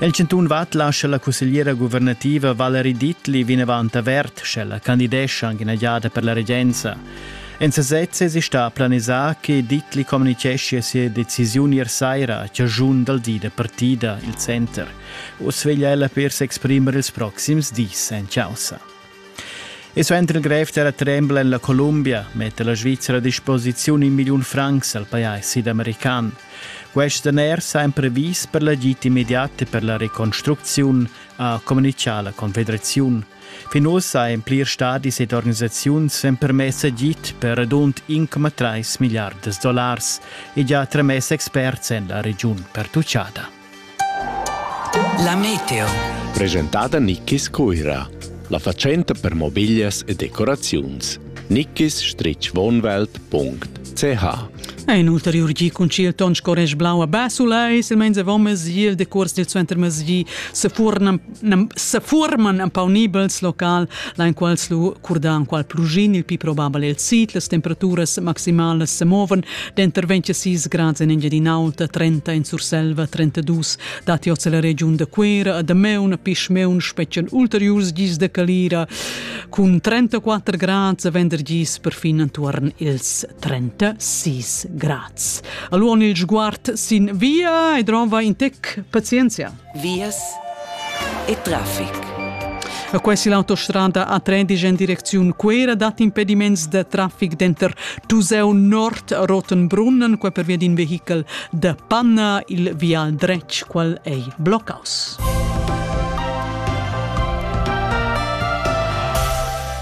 El chantun Vad lascha la cussegliera guvernativa Valerie Dittli vinavant avert, sch'ella candidescha ina giada per la regenza. En sesez esi sta planisà che Dittli communitgeschia sia decisiun ier saira, chaschun dal di da partida, il center. Uss veglia ella per s'exprimer ils proxims dis en chaussa. E suenter il grev terra trembla en la Columbia metta la Svizzera a disposiziun in milliun francs al pajais sidamerican. Quest daner sa en previs per l'agit immediat e per la reconstrucziun, ha communichà la Confederaziun. Fin ussa en plirs stadis ed organisaziuns èn permess agit per radund 1,3 miliards dollars e già tramess experts en la regiun pertuccada. La Meteo. Presentada Nickis Cuira, la fatschenta per mobiglias e decoraziuns. nickis-wohnwelt.ch Ein ulteriur gi concil ton sco resch blau a Basula e silmeins avon mesi il decuors dil suenter mesi sefurnan sefuorman empaunibels local, lain quals lu curdan qual plugin il pi probabel el sit, las temperaturas maximalas se moven denter 26 grads in Engiadin'Alta, 30 in Surselva, 32 dati oz la regiun de Quera, da meun pisch meun spetschen ulteriurs gis de Calira cun 34 grads a vendergis perfin antuorn ils 36 grads. Allora il sguard sin via e drova in tec pazienzia. vias e traffic. E quai si l'autostrada A13 en direcziun Cuera dat impediments de traffic denter Tuseu Nord Rotenbrunnen, qua per via d'in vehichel de Panna, il vial dretg, qual ei bloccaus.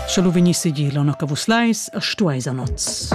Sche lu vegnissi gi l'onno che vus leis, stueis a noz.